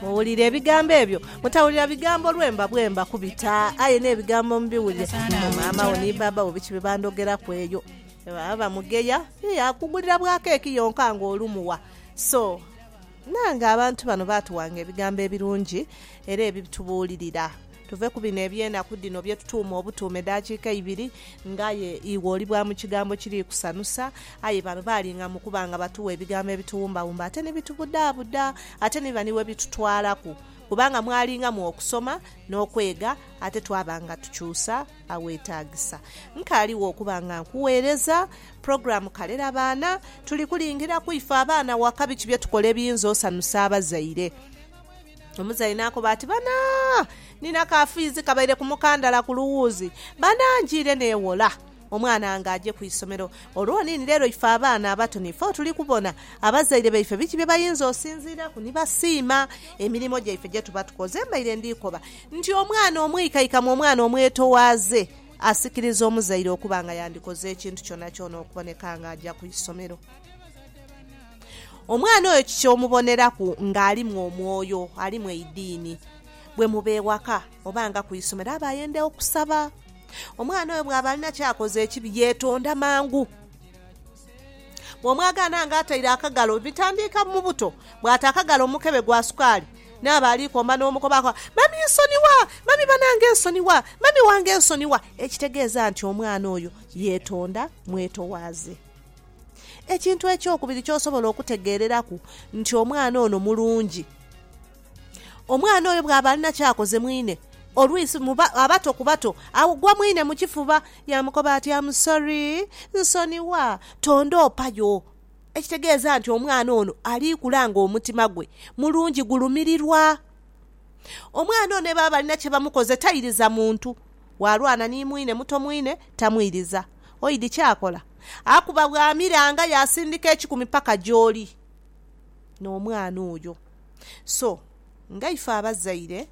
muwulire ebigambo ebyo mutawulira bigambo lwemba bwemba kubita aye n'ebigambo mubiwulire maama wo ni baba wo biki bebandogeraku eyo baba bamugeya akugulira bwa keeki yonka nga olumuwa so nange abantu bano batuwanga ebigambo ebirungi era ebitubuulirira Tuve ku bino eby'enaku dhino bye tutuuma obutuuma edhakiika ibiri, ng'aye iwe oli bwa mu kigambo kiri kusanusa. Aye bano baalinga mu kuba nga batuwa ebigambo ebituwumbawumba ate ni bitubudaabuda, ate ni biba ni we bitutwalaku. Kubanga mwalingamu okusoma n'okwega, ate twaba nga tukyusa aweetaagisa. Nkaligho okuba nga nkugheereza pulogulaamu Kalerabaana. Tuli kulingiraku ife abaana waka biki bye tukola ebiyinza osanusa abazaire. Omuzaire n'akoba ati, Bana, nina ka fiizi kabaire ku mukandala ku luwuuzi. Bana, njiire neewola omwana wange aje ku isomero. Olwo niini leero ife abaana abato nife otuli kubona abazaire baife biki bye bayinza osinziiraku ni basiima emirimo gyaife gye tuba tukoze. Mbaire ndi koba nti omwana omwikaikamu, omwana omwetowaaze, asikiriza omuzaire okuba nga yandikoze ekintu kyonakyona okuboneka nga aja ku isomero. Omwana oyo kiki omuboneraku ng'alimu omwoyo, alimu eidiini? Bwe muba ewaka oba nga ku isomero aba ayenda okusaba. Omwana oyo bw'aba alina ky'akoze ekibi, yeetonda mangu. Bw'omwagaana ng'ataire akagalo, bitandiika mu buto, bw'ata akagalo mu mukebe gwa sukaali, naaba ali komba n'omukoba akoba, Mami nsonigha! Mami banange nsonigha! Mami wange nsonigha! Ekitegeeza nti omwana oyo yeetonda mwetowaaze. Ekintu ekyokubiri ky'osobola okutegeereraku nti omwana ono mulungi, omwana oyo bw'aba alina kyakoze mwine, olwisi muba abato ku bato, agwa mwine mu kifuba yaamukoba ati, Am sorry, nsonigha, tondoopayo. Ekitegeeza nti omwana ono ali kula ng'omutima gwe mulungi, gulumirirwa. Omwana ono ni bw'aba alina kye bamukoze tairiza muntu. Waalwana ni mwine muto mwine tamwiriza. Oidhi kyakola? Akuba bw'amiranga yaasindika ekikumi paka gy'oli n'omwana oyo. So, nga ife abazaire,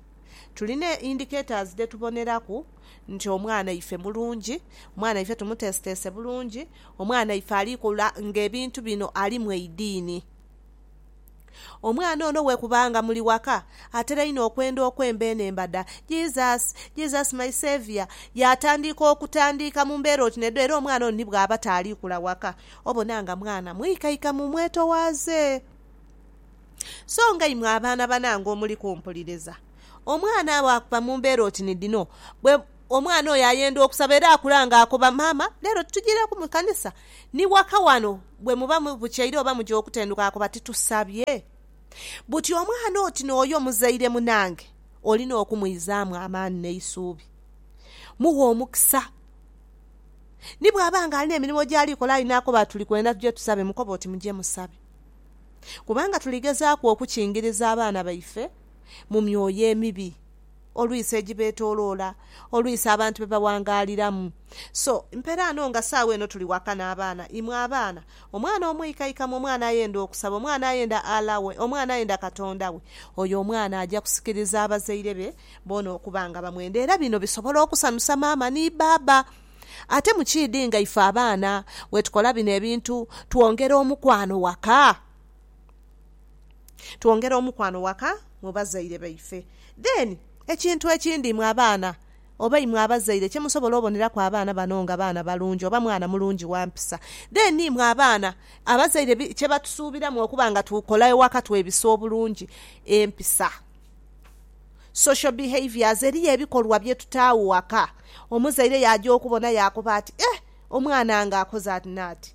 tulina indicators dhe tuboneraku nti omwana ife mulungi, omwana ife tumuteeseteese bulungi, omwana ife ali kula ng'ebintu bino ali mu eidiini. Omwana ono we kuba nga muli waka, atera inho okwenda okwemba eno embada, Jesus, Jesus my Saviour, yaatandiika okutandiika mu mbeera oti n'edho era omwana ono ni bw'aba taali kula waka, obona nga mwana mwikaika mu mwetowaaze. So nga imwe abaana banange omuli kumpuliriza, omwana bw'akuba mu mbeera oti ni dhino, bwe, omwana oyo ayenda okusaba era akula nga akoba, Maama, leero tujireku mu kanisa? Ni waka wano bwe muba mubukyaire oba muja okutenduka akoba titusabye? Buti omwana oti n'oyo muzaire munange olina okumwizaamu amaani n'eisuubi. Mughe omukisa. Ni bw'aba nga alina emirimo gy'ali kola aye n'akoba ati tuli kwenda tuje tusabe, mukobe oti muje musabe. Kubanga tuli gezaaku okukingiriza abaana baife mu myoyo emibi. Olwisa egibeetoloola, olwisa abantu be bawangaaliramu. So, mperaano nga saagho eno tuli waka n'abaana, imwe abaana, omwana omwikaikamu, omwana ayenda okusaba, omwana ayenda Allah we, omwana ayenda Katonda we, oyo omwana aja kusikiriza abazaire be boona okuba nga bamwenda. Era bino bisobola okusanusa maama ni baaba. Ate mukiidhi nga ife abaana bwetukola bino ebintu, twongera omukwano waka. twongera omukwano waka mu bazaire baife. Then ekintu ekindi mwe abaana oba imwe abazaire kyemusobola oboneraku abaana bano nga baana balungi oba mwana mulungi wampisa then imwe abaana abazaire kyebatusuubiramu okuba nga tukola ewaka twebisa obulungi empisa, social behaviours, eriyo ebikolwa byetutaagho waka omuzaire yaja okubona yakoba ati eh omwana wange akoze ati nati.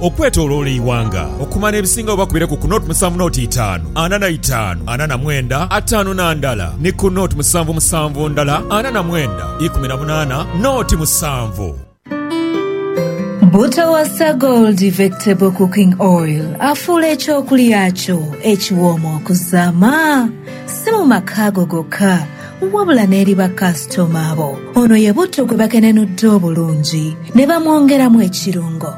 Okwetoloola eighanga okuba n'ebisinga oba kubireku ku nought musanvu nought itaanu ana na itaanu ana na mwenda ataanu na ndala ni ku nought musanvu musanvu ndala ana na mwenda ikumi na munaana nought musanvu. Butawasa Gold Vectable Cooking Oil afuula eky'okulya kyo ekiwooma okuzaama. Si mu maka go gokka, wabula n'eri bakasitoma bo. Ono ye butto gwe bakenenudde obulungi ne bamwongeramu ekirungo.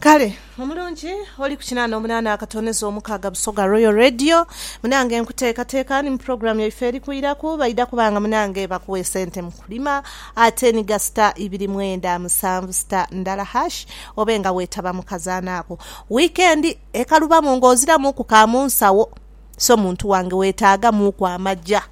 Kale omulungi oli ku kinaana omunaana akatonezo omukaaga Busoga Royal Radio munange nkuteekateeka ni mu pulogulaamu yaife eri kwiraku baidha kuba nga munange bakuwa esente mu kulima ate ni ga sita ibiri mwenda musanvu sita ndala hash obe nga weetaba mu kazaana ako. Wiikendi ekalubamu ng'oziramuuku ka mu nsawo so muntu wange weetaagamuuku amaja.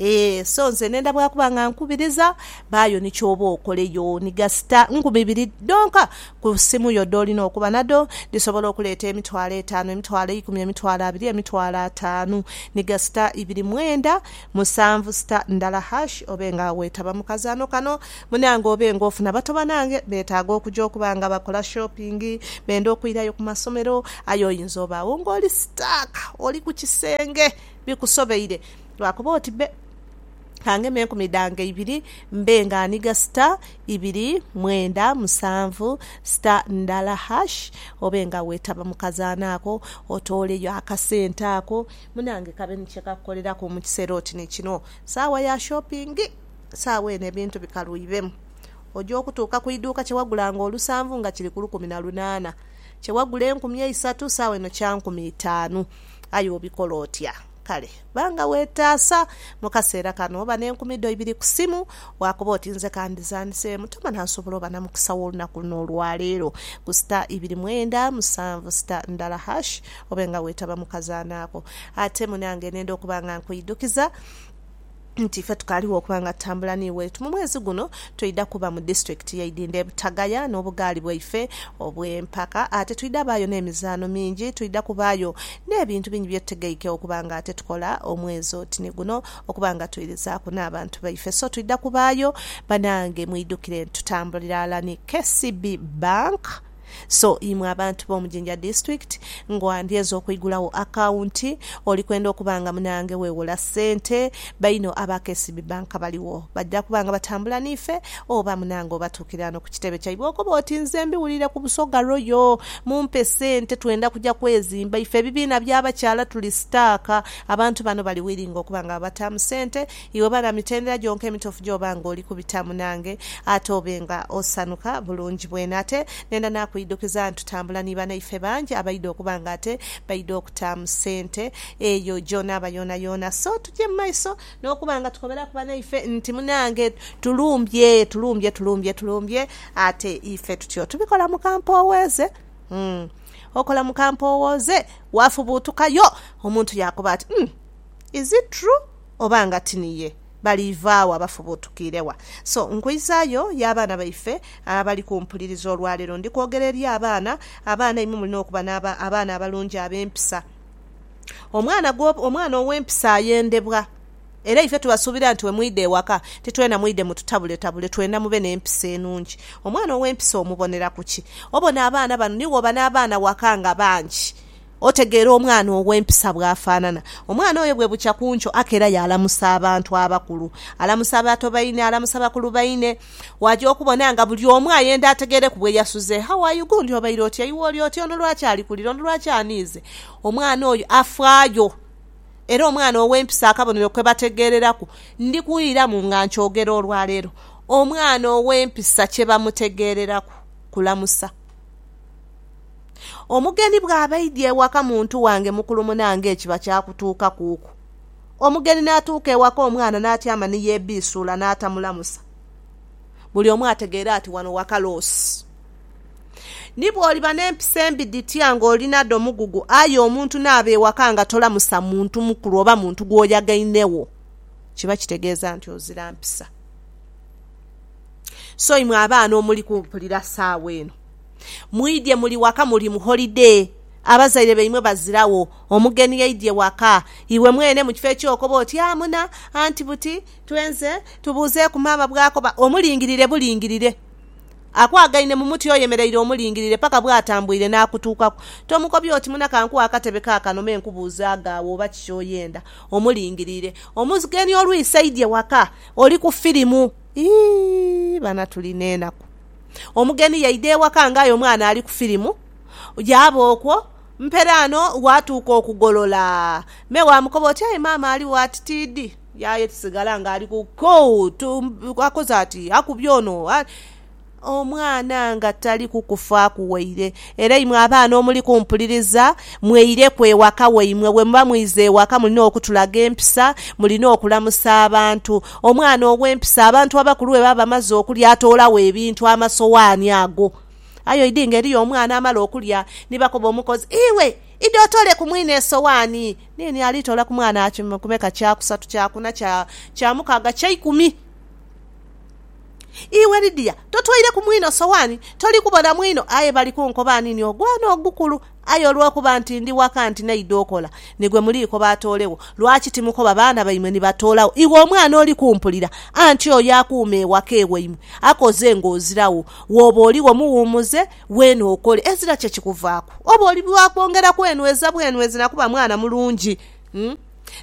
Ee, so nze nenda bwakuba nga nkubiriza, baayo ni kyoba okoleyo ni gasita nkumi ibiri dhonka ku simu yo dholina okuba nadho, dhisobola okuleeta emitwalo etaanu, emitwalo eikumi, emitwalo abiri, emitwalo ataanu ni gasita ibiri mwenda musanvu sita ndala hash. Obe nga wetaba mu kazaano kano munange obe nga ofuna bato banange betaaga okuja okuba nga bakola shopping, benda okwirayo ku masomero aye oyinza obagho nga oli stuck, oli ku kisenge. bikusobeire, lwakuba oti bbe, ka ngeme enkumi dhange ibiri, mbe nga nhiga sita ibiri mwenda musanvu sita ndala hash, obe nga weetaba mu kazaanho ako, otooleyo akasente ako. Munange kabe ni kye kakukoleraku mu kiseera oti ni kino saawa ya shopingi. Saawa eno ebintu bikaluibemu. Oja okutuuka ku iduuka kye wagulanga olusanvu nga kiri ku lukumi na lunaana, kye wagula enkumi eisatu saawa eno kya nkumi itaanu. Aye obikola otya? Kale ba nga weetaasa mu kaseera kano. Oba n'enkumi dho ibiri ku simu, waakoba oti, Nze ka ndhizaanise. Mukama n'asobola oba na mukisa wo olunaku luno olwa leero ku sita ibiri mwenda musanvu sita ndala hash, obe nga weetaba mu kazaano ako. Ate munange nenda okuba nga nkwidhukiza. nti ife tukaligho okuba nga tutambula ni waitu. Mu mwezi guno twidha kuba mu disitulikiti ye Idhindho e Butagaya n'obugaali bwaife obw'empaka. Ate twidha baayo n'emizaano mingi. Twidha kubaayo n'ebintu bingi bye tutegeike okuba nga ate tukola omwezi oti ni guno okuba nga twirizaku n'abantu baife. So twidha kubaayo banange mwidhukire nti tutambulira ghala ni KCB Bank. So imwe abantu b'omu Jinja District, ng'oa ndyeza okuigulawo akawunti, oli kwenda okuba nga munange wewola sente, baino aba KCB Bank baligho. Baja kuba nga batambula n'ife, oba munange obatuukira ghano ku kitebe kyaibwe okobe oti, Nze mbiwulire ku Busoga Royal, mumpe sente twenda kuja kwezimba. Ife ebibiina by'abakyala tuli sitaaka, abantu bano bali wilingi okuba nga babataamu sente, Iwe bala mitendera gyonka emitofu gy'oba nga oli kubitamu nange, ate obe nga osanuka bulungi bwene. Ate nenda naakwidhukiza nti tutambula ni banaife bangi abaidha okuba nga ate baidha okutaamu sente eyo gy'onaaba yoonayoona. So tuje mu maiso n'okuba nga tukoberaku banaife nti munange tulumbye, tulumbye, tulumbye, tulumbye, ate ife tutyo tubikola mu kampowooze. Umm okola mu kampowooze, waafubuutukayo omuntu yaakoba ati, Umm is it true? oba nga ti niye, baliva wa bafubuutukiire wa? So, nkwizaayo y'abaana baife abali kumpuliriza olwaleero. Ndi kwogera eri abaana. Abaana, imwe mulina okuba n'aba, abaana abalungi ab'empisa. Omwana gwo, omwana ow'empisa ayendebwa. Era ife tubasuubira nti bwe mwidha ewaka, ti twena mwidhe mututabuletabule, twena mube n'empisa enungi. Omwana ow'empisa omubonera ku ki? Obona abaana bano, ni wooba n'abaana waka nga bangi, Otegeera omwana ow'empisa bw'afaanana? Omwana oyo bwe bukya ku nkyo aka era yaalamusa abantu abakulu, alamusa abato baine, alamusa bakulu baine. Waja okubona nga buli omu ayenda ategeereku bwe yasuze. How are you? Gundi obaire otya? Iwe oli otya? Ono lwaki ali kulira? Ono lwaki aniize? Omwana oyo afaayo. Era omwana ow'empisa akabonero kwe bategeereraku, ndi kughiiramu nga nkyogera olwa leero, omwana ow'empisa kye bamutegeereraku kulamusa. Omugeni bw'aba aidye ewaka muntu wange mukulu muna ng'ekiba kyakutuukakuuku, omugeni n'atuuka ewaka omwana n'atyama ni yeebiisuula n'atamulamusa, buli omu ategeere ati wano waka loosi. Ni bw'oliba n'empisa embi dhitya ng'oli nadho mugugu, aye omuntu n'aba ewaka nga tolamusa muntu mukulu oba muntu gw'oyagainegho, kiba kitegeeza nti ozira mpisa. So imwe abaana omuli kumpulira saawa eno. Mwidhye muli waka muli mu holide. Abazaire baimwe baziragho. Omugeni aidhye waka. Iwe mwene mu kifo eky'okoba oti, Amuna, anti buti, twenze, tubuuzeeku maama bw'akoba, omulingirire bulingirire. Akwagaine mu muti oyemereire omulingirire paka bw'atambuire n'akutuukaku. Tomukobya oti, Muna kankuwe akatebe kaakano me nkubuuzeagho agho oba ki ky'oyenda. Omulingirire. Omugeni olwise aidhye waka. Oli ku firimu. Iyii! Bana tuli n'enaku. Omugeni yaidha ewaka ng'aye omwana ali ku firimu. Yaaba okwo, mperaano waatuuka okugolola. Me waamukoba oti, Aye maama ali wati tiidhi. Yaaya kisigala ng'ali ku kuu tu, akoze ati, akubye ono. Omwana nga tali kukufaaku waire. Era imwe abaana omuli kumpuliriza, mweireku ewaka waimwe. Bwe muba mwize ewaka, mulina okutulaga empisa, mulina okulamusa abantu. Omwana ow'empisa, abantu abakulu bwe baba bamaze okulya, atoolagho ebintu, amasowaani ago. Aye oidhi nga eriyo omwana amala okulya, ni bakoba omukozi, Iwe, idha otoole ku mwine esowaani! Niini alitoola ku mwana kya kumeka, kya kusatu, kya kuna, kya, kya mukaaga, kya ikumi. Iwe Lidia, totoire ku mwino sowaani, toli kubona mwino, aye bali kunkoba nti ni ogwana ogukulu. Aye olw'okuba nti ndi waka nti naidha okola, nigwe muli koba atoolegho. Lwaki timukoba baana baimwe ni batoolagho? Iwe omwana oli kumpulira? Anti oyo akuuma ewaka ewaimwe akoze ng'oziragho. Wooba oligho muwumuze weene okole, ezira kye kikuvaaku. Oba oli wa kwongeraku enhweza bwenhwezi na kuba mwana mulungi.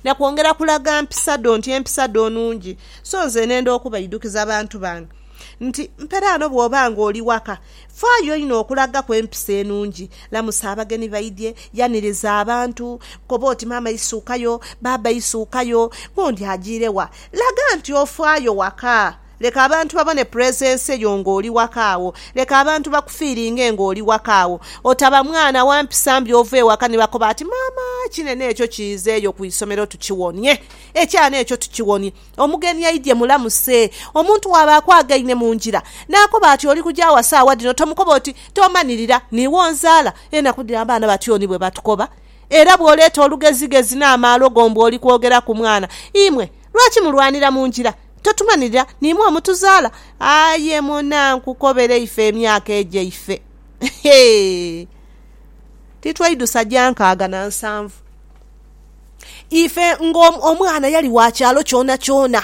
na kwongera kulaga mpisa dho nti empisa dho nungi. So nze nenda okubaidhukiza bantu bange nti mperaano bw'oba nga oli waka, faayo inho okulagaku empisa enungi. Lamusa abageni baidhie, yaniriza abantu, koba oti maama isuukayo, baaba isuukayo, gundi ajiire wa, laga nti ofaayo waka. Leka abantu babone puresense yo ng'oli waka agho. Leka abantu bakufiiringe ng'oli waka agho. Otaba mwana wa mpisa mbi ova ewaka ni bakoba ati, Maama, kinene ekyo kiizeeyo ku isomero tukiwonie. Ekyana ekyo tukiwonie. Omugeni aidye mulamuse. Omuntu bw'aba akwagaine mu ngira, n'akoba ati oli kuja awa saawa dhino, tomukoba oti, Tomanirira, niiwe onzaala. Enaku dhino abaana batyo ni bwe batukoba. Era bw'oleeta olugezigezi n'amaalo go mbu oli kwogera ku mwana. Imwe, lwaki mulwanira mu ngira? Totumanhirira n'imwe omutuzaala? Aye muna nkukobere ife emyaka egyaife, titwaidhusa gya nkaaga na nsanvu. Ife ng'omwana yali wa kyalo kyonakyona,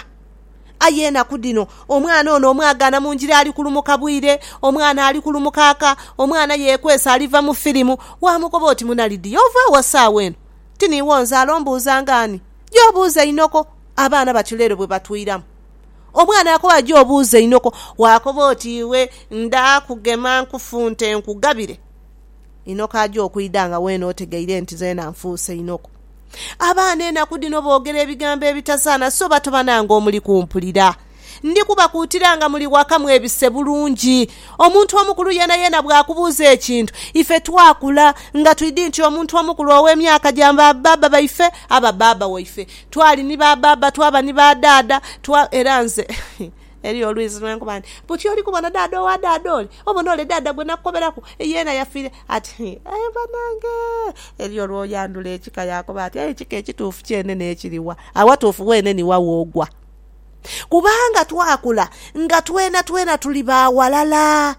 aye enaku dhino omwana ono omwagaana mu ngira ali kulumuka bwire, omwana ali kulumuka aka, omwana yeekwese aliva mu firimu. Waamukoba oti, Muna Lidiya, ova wa saagha eno? Ti niiwe onzaala? Ombuuzanga ani? Ja obuuze inhoko abaana bati leero bwe batwiramu. Omwana akowa ja obuuze inhoko, waakoba oti iwe nda kugema nkufunte nkugabire. Inhoko aja okwidha nga weena otegeire nti zeena nfuuse inhoko. Abaana enaku dhino boogera ebigambo ebitasaana so batoba nange omuli kumpulira. Ndi kubakuutira nga muli waka mwebise bulungi. Omuntu omukulu yeenayeena bw'akubuuza ekintu, ife twakula nga twidhi nti omuntu omukulu ow'emyaka gya ba baaba baife, aba baaba waife. Twali ni ba baaba, twaba ni ba daada, twa, era nze, eriyo olwizi lwe nkuba nti, Buti oli kubona daada owa daada ole? Obona ole daada gwe nakukoberaku? Yeena yafiire ati, Hi, aye banange! Eriyo olwoyandhula ekika yaakoba ati, Aye ekika ekituufu kyene n'ekiri wa? Awatuufu weene ni wa w'ogwa? kubanga twakula nga twenatwena tuli ba ghalala.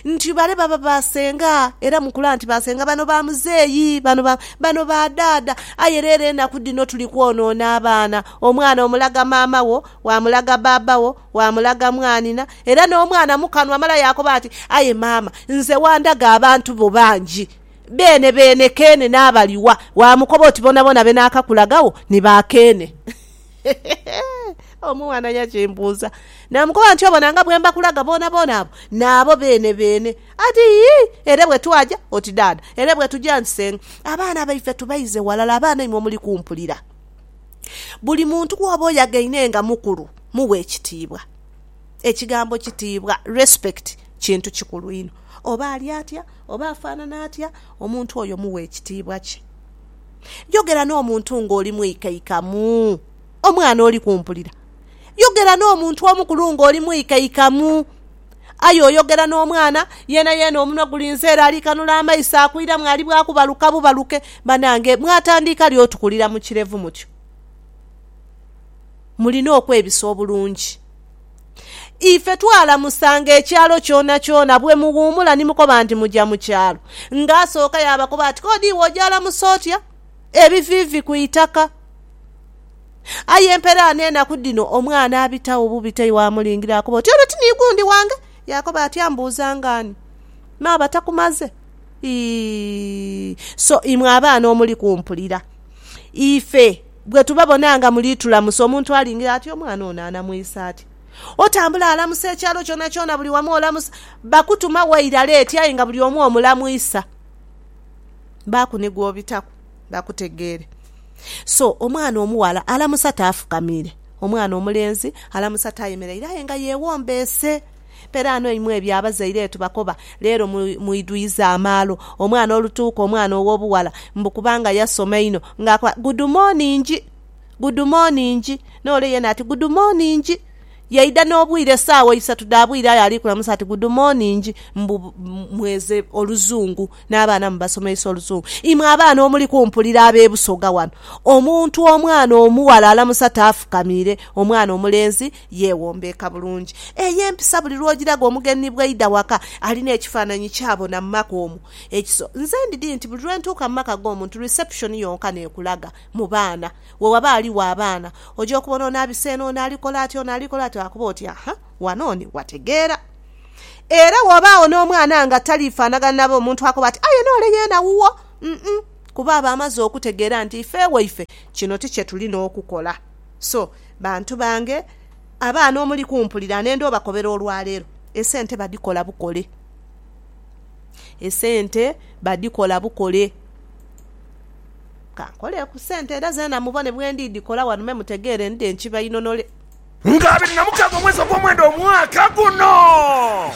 Nti bale baba ba senga, era mukula nti ba senga, bano ba muzeeyi, bano ba, bano ba dhaadha. Aye leero enaku dhino tuli kwonoona abaana. Omwana omulaga maama wo, waamulaga baaba wo, waamulaga mwanhina, era n'omwana mu kanwa mala yaakoba ati, Aye maama, nze wandaga abantu bo bangi. Beene beene keene n'abaliwa, waamukoba oti boonaboona be naakakulagagho ni ba keene. Omwana yakimbuuza, naamukoba nti, Obona nga bwe mbakulaga boonaboona abo? Naabo beene beene. Ati, Yii, ere bwe twaja, oti daada, ere bwe tuja nti senga, abaana baife tubaize ghalala, abaana imwe muli kumpulira. Buli muntu gw'oba oyagaine nga mukulu mughe ekitiibwa. Ekigambo kitiibwa, respect, kintu kikulu inho. Oba ali atya, oba afaanana atya, omuntu oyo mughe ekitiibwa kye. Yogera n'omuntu ng'oli mwikaikamu. Omwana oli kumpulira? Yogera n'omuntu omukulu ng'oli mwikaikamu. Aye oyogera n'omwana yeenayeena omunwa gulinze ere ali kanula amaiso akwiramu ali bwa kubaluka bubaluke. Banange mwatandiika li otukulira mu kirevu mutyo? Mulina okwebisa obulungi. Ife twalamusanga ekyalo kyonakyona bwe muwuumula ni mukoba nti muja mu kyalo. Ng'asooka yaabakoba ati, K'odi iwe ojaalamusa otya ebiviivi ku itaka? Aye emperaano enaku dhino omwana abitagho bubi ti waamulingira akoba oti, Ono ti ni gundi wange? Yaakoba ati, Ambuuzanga ani? Me aba takumaze? Ii So imwe abaana omuli kumpulira, ife. Bwe tubabona nga muli tulamusa, omuntu alingira ati, Omwana ono anamwisa atya? Otambula alamusa ekyalo kyonakyona, buli wamu olamusa. Bakutuma waire ale eti aye nga buli omu omulamwisa. Baaku ni gw'obitaku bakutegeere. So, omwana omughala alamusa taafukamiire. Omwana omulenzi alamusa tayemeraire aye nga yeewombeese. Peraano imwe ebyo abazaire etubakoba leero mwidhuiza amaalo. Omwana olutuuka omwana ow'obughala mbu kubanga yasoma inho ng'akoba gudumoningi, gudumoningi, n'ole yeena ati gudumoningi. Yaidha n'obwire esaawa isatu dha bwire aye ali kulamusa ati gudumoningi mbu mweze Oluzungu n'abaana mubasomeisa Oluzungu. Imwe abaana omuli kumpulira ab'e Busoga wano, omuntu omwana omughala alamusa taafukamiire, omwana omulenzi Yeewombeeka bulungi. Eyo empisa buli lw'ogiraga omugeni bw'aidha waka, alina ekifaananyi ky'abona mu maka omwo. Ekiso. Nze ndidhi nti buli lwe ntuuka mu maka g'omuntu, reception yonka n'ekulaga mu baana. We waba aligho abaana, oja okubona ono abise eno, ono ali kola ati, ono ali kola ati, akuba oti, Aha, wano oni wategeera. Era wobaagho n'omwana nga taliifaanagana na be, omuntu akoba ati, Aye n'ole yeena wuwo. Uh-uh. Kuba aba amaze okutegeera nti ife ewaife kino ti kye tulina okukola. So, bantu bange, abaana omuli kumpulira nenda obakobera olwaleero, esente badikola bukole. Esente badikola bukole. Kankole ku sente era zeena mubone bwendidikola wano me mutegeere ndidhe nkibainonole. Nga abiri na mukaga omwezi ogwomwenda omwaka guno.